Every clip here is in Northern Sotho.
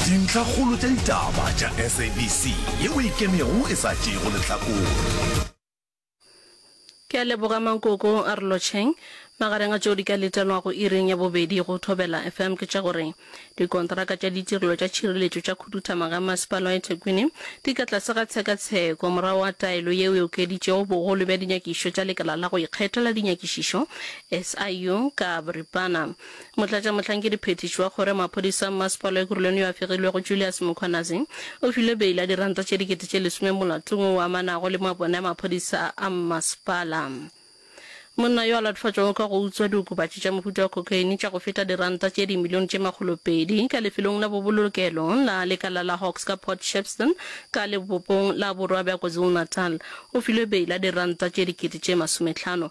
Dintlhakgolo tša ditaba tša SABC ye o e kemego e sa tšeego lehlakore. Ke a leboga Mankoko a re lotšheng. Magareng a tšeo di ka letelwago iring ya bobedi go Thobela FM ke tša gore dikontraka tša ditirelo tša tšhireletšo tša khuduthamaga ya Masepala wa Ethekwini di ka tlase ga tshekatsheko morago ga taelo yeo e okeditšego bogolo bja dinyakišo tša Lekala la go Ikgethela Dinyakišišo, SIU, ka boripana. Motlatšamohlankedi Phethiši wa Kgoro ya Maphodisa Mmasepala Ekurhuleni yo a fegilwego Julius Mkhwanazi o file beila ya diranta tše dikete tše lesome molatong wo o amanago le mabone a maphodisa a mmasepala. Monna yo a latofatšwago ka go utswa diokobatši tša mohuta wa cocaine tša go feta diranta tše dimilione tše makgolo pedi ka lefelong la bobolokelo la lekala la Hawks ka Port Shepstone ka lebopong la borwa bja KwaZulu-Natal o filwe beila ya diranta tše dikete tše masometlhano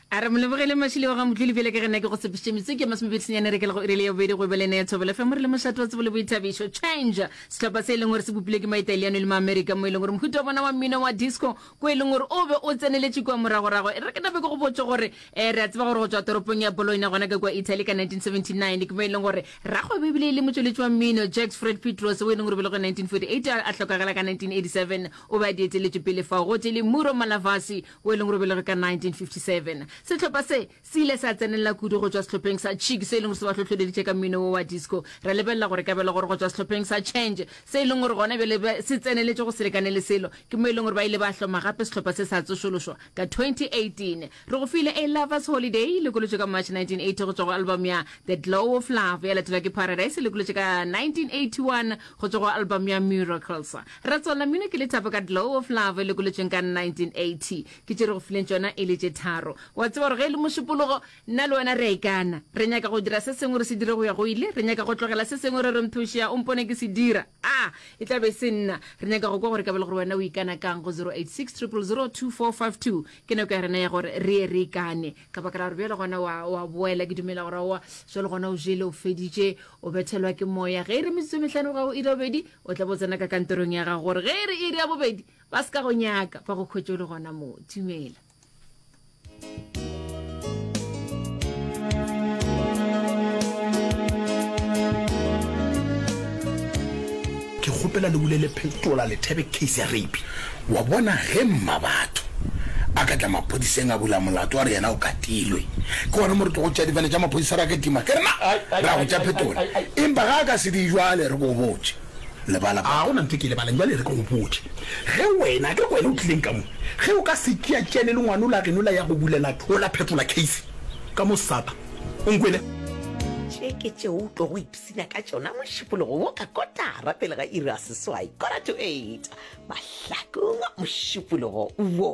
A re Molebogele Mashilo wa ga Motloli bjale ka ge nna ke go tshepišitše metsotso e masomepedi senyane re kela go iri le ya bobedi go ebelene ya Thobela FM re le mošate wa tsebo le boithabišo. Change! Sehlopha se e leng gore se bopilwe ke Maitaliano le Maamerika mo e leng gore mohuta wa bona wa mmino wa disco ko e leng gore o be o tseneletše kua moragorago. E re ke nabe ke go botše gore um re a tseba gore go tšwa toropong ya Bologna gona ka kua Italy ka 1979 ke mo e leng gore rakgwebo e bile e le motšweletši wa mmino Jacques Fred Pietros wo e leng gore o belegwe 1948 a hlokagala ka 1987 o be a di eteletše pele fao gotee le Muro Malavasi o e leng gore belege ka 1957 sehlopha se se ile sa tsenelela kudu go tšwa sehlopheng sa chick se e leng gore se ba hlohloleditše ka mmino wo wa disco ra lebelela gore ka bela gore go tšwa sehlopheng sa change se e leng gore gona bjale se tseneletše go selekane le selo ke mo e leng gore ba ile ba hloma gape sehlopha se sa tsošološwa ka 2018 re go file a lovers holiday e lekolotšwe ka march 1980 go tšwa go album ya the glow of love ya latelwa ke paradise e lekolotšwe ka 1981 Go tšwa go album ya Miracles. Ra tswalla mmino ke lethabo ka Glow of Love e lokolotšweng ka 1980. Ke tše re go fileng tšona e le tše tharo. Wa tseba gore ge e le mošupologo, nna le wena re a ikana. Re nyaka go dira se sengwe re se dire go ya go ile. Re nyaka go tlogela se sengwe re re mpheošea o mpone ke se dira. Aa, e tla be e se nna. Re nyaka go kwa gore ka bele gore wena o ikana kang go 086 000 2452. Ke nako ya rena ya gore re ye re ikane. ka baka la gore bjale gona wa, wa boela ke dumela gore wa jalo gona o jele o feditše o bethelwa ke moya ge e re metsotso metlhano ga o ira bobedi o tla bo tsena ka kantorong ya gago gore ge e re iri ya bobedi ba se ka go nyaka ba go khwetše o le gona moo dumela Ke kgopela le bule le phetola lethebe case ya rape. Wa bona ge mmabatho a ka tla maphodiseng a bula molato a re yena o katilwe ke gona mo re tlogo tšea difane tša maphodisa ra ke tima ke re na ra go tša phetola empa ga a ka se di jwale re ko botše lebala a gona ntho ke lebalang jwale re ko botše ge wena ke re wena o tlileng ka mo ge o ka se tšea tšene le ngwano la geno la ya go bulela thola phetola case ka mo sata o nkwele tše ke tšeo tlogo Tsenya ka tšona mošupologo wo ka kotara pele ga iri ya seswai, quarter to eight, mahlakong a mošupologo wo.